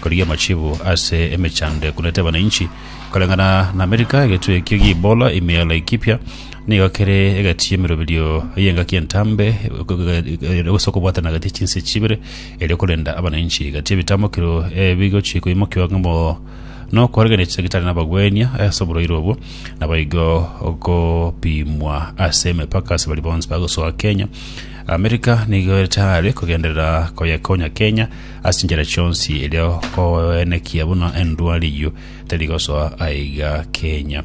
Korigia amachibu ase emechando ekunete abananchi koreng'ana na Amerika, egetwe ekio gia Ebola ime Laikipia nigo kere egati y'emeroberio y'engaki entambe gose okobwatana gati chinse chibere erio korenda abananchi gati ebitamokero ebigochia koimokiwa ng'amo nokoregereria chidagitari nabagwenia ase oborwaire obwo naboigo gopimwa ase emepaka ase baria bonsi bagosoa Kenya. Amerika nigo etare kogenderera koyekonya Kenya Ase enchera chionsi erio koenekia buna endwari eyio tari gosoa aiga kenya.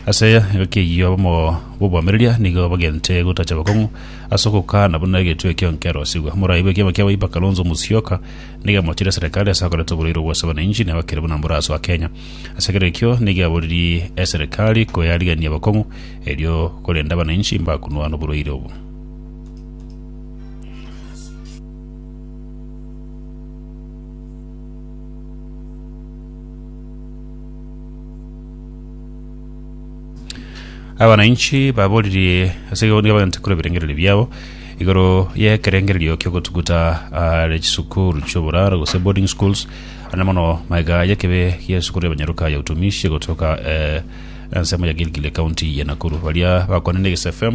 Ase egaki eyio abamo b'obwamereria nigo bagente gotacha abakong'u ase ogokana buna egetwe ekio nkerosigwe. Morai bw'ekiama kia Wiper Kalonzo Musyoka nigo amochirie eserekari ase akorete oboreiro bw'ase abananchi na bakere buna mborasoa Kenya. Ase ekero ekio nigo aboririe eserekari koyarigania abakong'u erio korende abananchi mbakunwa noboreiro obo. abananchi baboririe ase igoro nigo bagachia korwa ebirengererio biabo igoro y'ekerengererio ki'ogotuguta are chisukuru chi'oboraro gose boarding schools ande mono magega y'ekebe y'esukuru y'abanyaruka ya utumishi egotoka eh, ensemo ya gilgile county ya nakuru baria bakwanire egis fm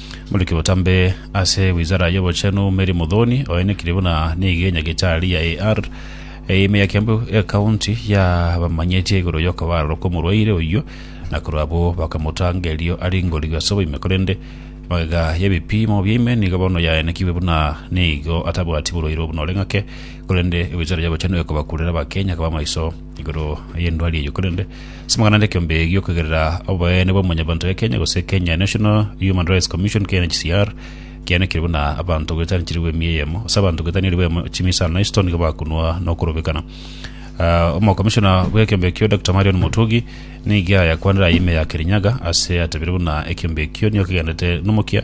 Moriki botambe ase wizara y'obochenu Mary Muthoni oenekire buna nigo enyagitari ya AR eime ya Kiambu County yabamanyetie igoro y'okobarwa kw'omorwaire oyio na korwa abwo bakamotanga erio aringorigwe ase oboime korende magega y'ebipimo biaime nigo bono yaenekigwe buna nigo atabwati borwaire obo noreng'ake korende wizara y'obochenu ekobakurera abakenya koba maiso igoro y'endwari eyio korende ase amang'ana ande ekiombe giokogerera oboene bwa omonyabanto ya Kenya gose Kenya National Human Rights Commission KNHCR kianekire buna abanto goetania chiribu emi eyemo ase abanto goetania eribu eyemo chimisa na isto nigo bakunwa na okorobekana Ah, omokomishona bw'ekiombe ekio Dr Marion Motugi nigo yakwanire aye ime ya Kirinyaga ase atabire buna ekiombe ekio nigo kegendete nomokia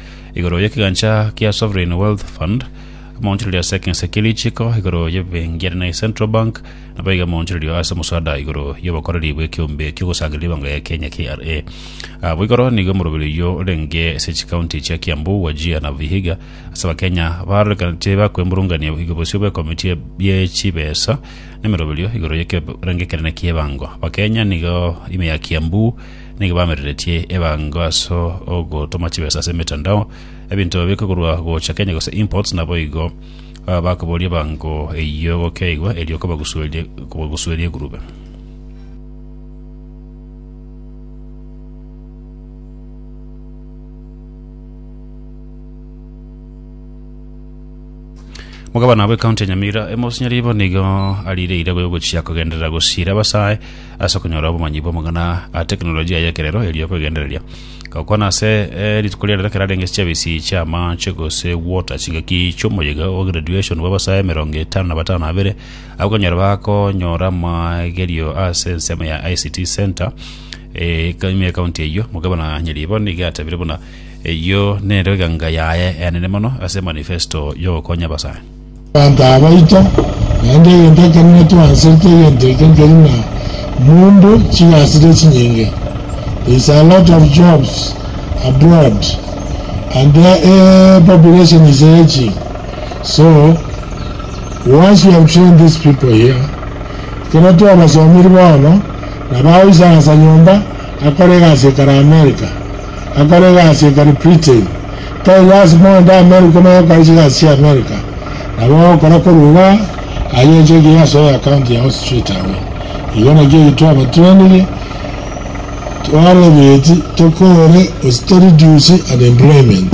igoro y'ekegancha kia Sovereign Wealth Fund, amaonchorerio ase ekense kia Richiko igoro y'ebenki ere naye Central Bank, nabo iga amaonchorerio ase omoswada igoro y'obokoreri bw'ekeombe ki'ogosangereria ribango ya Kenya, KRA. Abwo igoro nigo omoroberi oyio orenge ase chikaunti chia Kiambu, Wajir na Vihiga ase Abakenya barorekanete bakwemurungania igo bosio bw'ekomiti ye chibesa na emeroberio igoro y'ekerengekerero ki'ebango. Abakenya nigo ime ya Kiambu nigo bamereretie ebango aso ogotoma chibesa ase emetandao, ebinto babeke korwa gocha Kenya gose imports, naboigo ah, bakoboria ebango eyio gokeigwa erio kobagusuerie kobagusuerie egurube. Mugabana bwe county ya Nyamira Emosnya Ribo nigo arire irego yogochia kogenderera gosiira abasae ase okonyora obomanyi bw'amang'ana a teknolojia y'ekerero erio kwegendereria gokwana ase eh, rituko ria rero ekero arenge chiabisi chi'amache gose water chingaki chiomoyega o graduation bw'abasae emerongo etano na batano abere abakonyora bakonyora amagerio ase ensemo ya ICT Center eh, ime county eyio mugabana Nyaribo nigo atabire buna Eyio nero eganga yaye enene mono ase emanifesto y'ogokonya abasae. Abanto abaito, naende egento ekenene twanserete egento ekio nkeri na mumbu chigasire chinyinge. There is a lot of jobs abroad and the population is aging so once we have trained these people here ekero twabasomiri bono nabo agoisagasa nyomba akore egasi ekare America. Akore egasi ekeri Britain, tari lasima onde Amerika omenye gokora chigasi chia Amerika, nabo ogokora korwa iga aye ense egiya ase oyo account yao straight away. Igo nakio eki twabateneniri twarebeti tokore gose to reduce unemployment.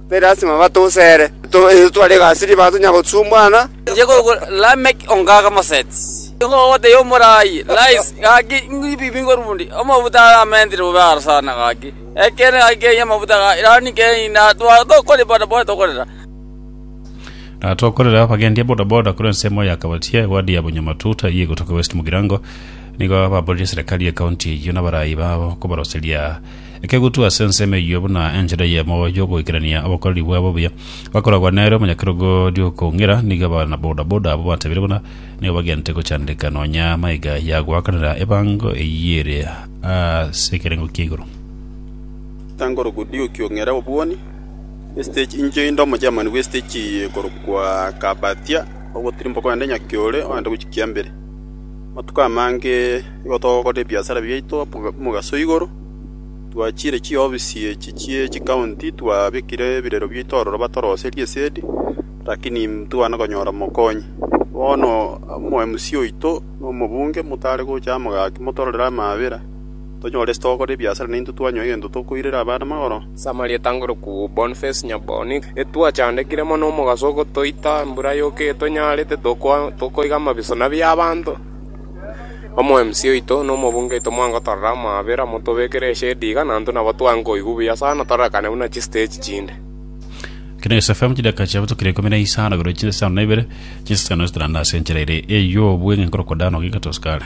Tari lasima batoseere, itwe tware egasi ribaga tonya gosumbwana. Inche goku Lameki ongaake Moseti. Nigo ogotebia omoraai, Rais, gaki ngibibi ngorundi, amabuta aramentire bobe aro sana gaki. Ekeene gaki keri amabuta ga irani keri na tware tokori bodaboda tokorera. Na tokorera abagendi a bodaboda korwa ensemo ya Kabatia ewadi ya Bonyamatuta eyio egotoka West Mugirango nigo baborire serikali ye county eyio na abarai babo kobaroseria ekegutu ase ensemo eyio buna enchera eyemo y'ogoikerania obokoreri bwabo obuya. Bakoragwa nere omonyakerogo ri'okong'ira, nigo abanabodaboda abwo batebiire buna nigo bagente gochandeka nonya maiga ya goakanera ebango eyio ere ase ekerengo kia igoro. Tangorugu Diuki ong'ira obwoni esitich inche inde omochairman bw'esitich eye ekorokwa Kabatia ogotirimboka ogende Nyakiore ogende gochia Kiambere. Amatuko amange igo togokora ebiasara biaito omogaso igoro. Twachire chiofisi echi chie chikaunti twabekire ebirero biaito aroro batoroserie esegi, lakini ntibwana konyora mokonyi. Bono omo MC oito na omobunge motare gocha amo gaki motororere amaabera, tonyore ase togokora ebiasara na intwe twanyoa egento tokoirera abana magoro. Ase amariogi atangore kobua Boniface Nyaboni, etwachandekire mono omogaso ogotoita embura yoka eyo tonyarete, tokoiga amabiso na bia abanto. Omo-MC oito na omobunge oito mwangotorera amaabera, motobekere eshedi iga, na intwe nabo twange koigwa buya sana, tororekane buna chisteji chinde. Kina SFM chidaeka chia botuko ikomi na isano igoro chinsa chitano na ibere chinsa chitano zitaranda ase enchera ere eyio obweng'e nkorokwa Dano gika tosukare.